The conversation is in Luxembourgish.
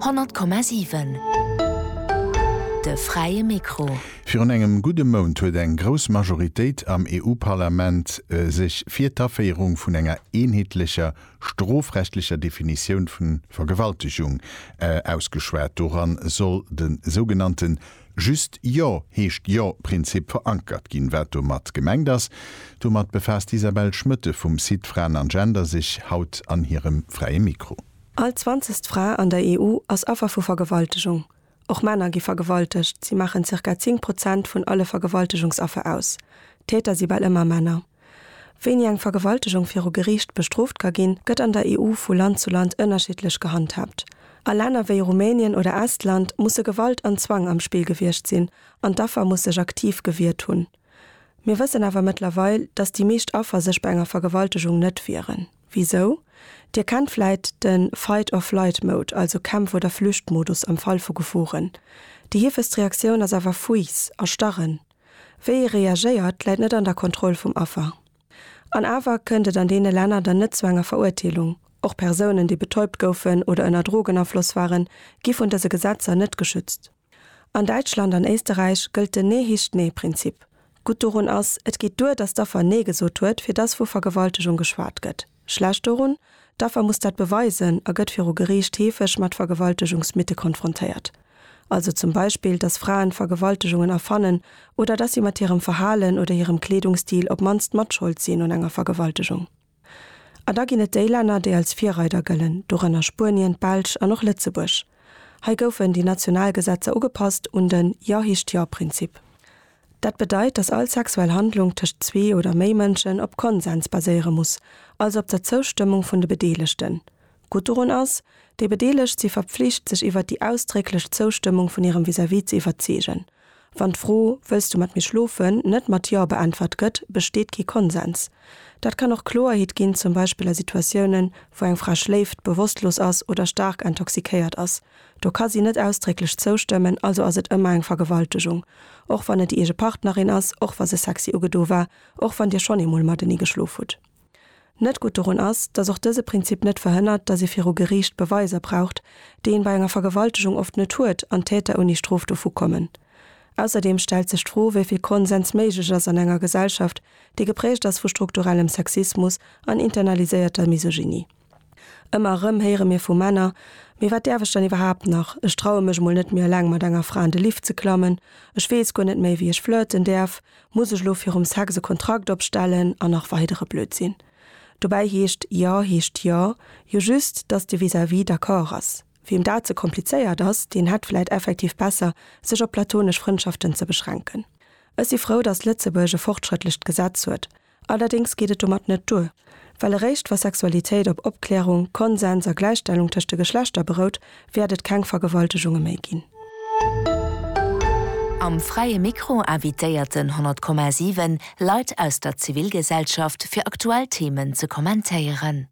Honnert Komma siwen, de fräie Mikro. Virun engem gudde Mount huet eng grouss Majoritéit am EU-Parlament sech fir d'Aféierung vun enger eenheetlecher strofrechtlecher Definitioun vu Vergewaltegung ausgeschwat. Doran soll de sougenannte Just Jo heescht Jo Prinzip verankert ginn. Wat domat gemengt ass, domat befaasst d'Isabelle Schmoetthe vum Site Fraen an Gender sech haut an hirem Fräie Mikro. All zwanzegst Fra an der EU ass Affer vu Vergewaltegung. Och Männer gi vergewaltegt, si maachen zirka 10 Prozent vun alle Vergewaltegungsaffer aus. D'Täter si bal ëmmer Männer. Wéini eng Vergewaltegung viru Geriicht bestrooft ka ginn, gëtt an der EU vu Land zu Land ënnerschiddlech gehandhaabt. A Länner wéi Rumänien oder Estland musse Gewalt an Zwang am Spill gewiescht sinn an d'Affer muss sech aktiv gewiert hunn. Mir wëssen awer mëttlerweil, dass déi meescht Affer sech bei enger Vergewaltegung net wieren. Wisou? Dir kennt vläit de Fight-or-Flight-Mode, also Kämpf oder Flücht-Modus am Fall vu Geforen. Déi heefegst Reaktioun ass awer Fuiss, Erstarren. Wéi ee reagéiert, läit net an der Kontroll vum Affer. An awer kënnt et an deene Länner dann net zu enger Verurteelung. Och Persounen, déi betäubt goufen oder ënner Drogenafloss waren, gi vun dëse Gesetzer net geschützt. An Däitschland an Éisterräich gëllt den Ne hicht ne Prinzip. Gutt dorun ass, et geet duer, datt d'Affer Nee gesot huet, fir datt vu Vergewaltegung geschwat gëtt. Schlecht dorun, D'Affer muss dat beweisen a gëtt viru Geriicht heefeg mat Vergewaltegungsmythe konfrontéiert. Also zum Beispill, dass Fraen Vergewaltegungen erfannen oder dass si mat hirem Verhalen oder hirem Kleedungsstil op mannst matschold sinn un enger Vergewaltegung. A da ginn et déi Länner, déi als Virreider gëllen, dorënner Spuenien, d'Belsch an och Lëtzebuerg. Hei goufen déi national Gesetzer ugepasst un den Ja-Hicht-Ja-Prinzip. Dat bedeit, dass all sexuell Handlung tëscht zwee oder méi Mënschen op Konsens baséiere muss, also op der Zoustëmmung vun de Bedeelegten. Gutt dorun ass, Déi Bedeelegt si verpflicht, sech iwwert déi ausdrécklech Zoustëmmung vun hirem Vis-à-vis ze iwwerzeegen. Wann d'Fro Wëlls du mat mir schlofen? net mat Jo beäntwert gëtt, besteet kee Konsens. Dat kann och Kloerheet ginn, zum Beispill a Situatiounen, wou eng Fra schléift, bewosstlos ass oder staark intoxikéiert ass, Do ka si net ausdrécklech zoustëmmen, also ass et ëmmer eng Vergewaltegung. Och wann et déi eege Partnerin ass, och wa se sexy ugedo war, och wann Dir schonn eemol matenee geschlof hutt. Net gutt dorun ass, datt och dëse Prinzip net verhënnert, datt ee viru Geriicht Beweiser braucht, déi een bei enger Vergewaltegung oft net huet, an d'Täter ouni Strof dovu kommen. Ausserdeem stellt sech d'Fro, wéi vill Konsens méiglech ass an enger Gesellschaft, déi geprägt ass vu strukturellem Sexismus an internaliséierter Misogynie. Ëmmer erëm héiere mir vu Männer, Mee wat däerf ech dann iwwerhaapt nach? Ech traue mech mol net méi eleng mat enger Fra an de Lift ze klammen. Ech weess guer net méi, wéi ech flirten däerf. Muss ech lo virum Sex e Kontrakt opstellen? An nach weidere Blödsinn. Dobäi heescht Jo heescht Jo jo just, dass de Vis-à-vis d'accord ass. Wiem dat ze komplizéiert ass, deen hätt vläit effektiv besser, sech op platonesch Frëndschaften ze beschränken. Ech si frou, dass Lëtzebuerg e fortschrëttlecht Gesetz huet, Allerdéngs geet et domat net duer, well eréischt wa Sexualitéit op Opklärung, Konsens a Gläichstellung tëscht de Geschlechter berout, wäert et keng Vergewaltegunge méi ginn. Am Fräie Mikro invitéierten 100,7 Leit aus der Zivilgesellschaft fir aktuell Themen ze kommentéieren.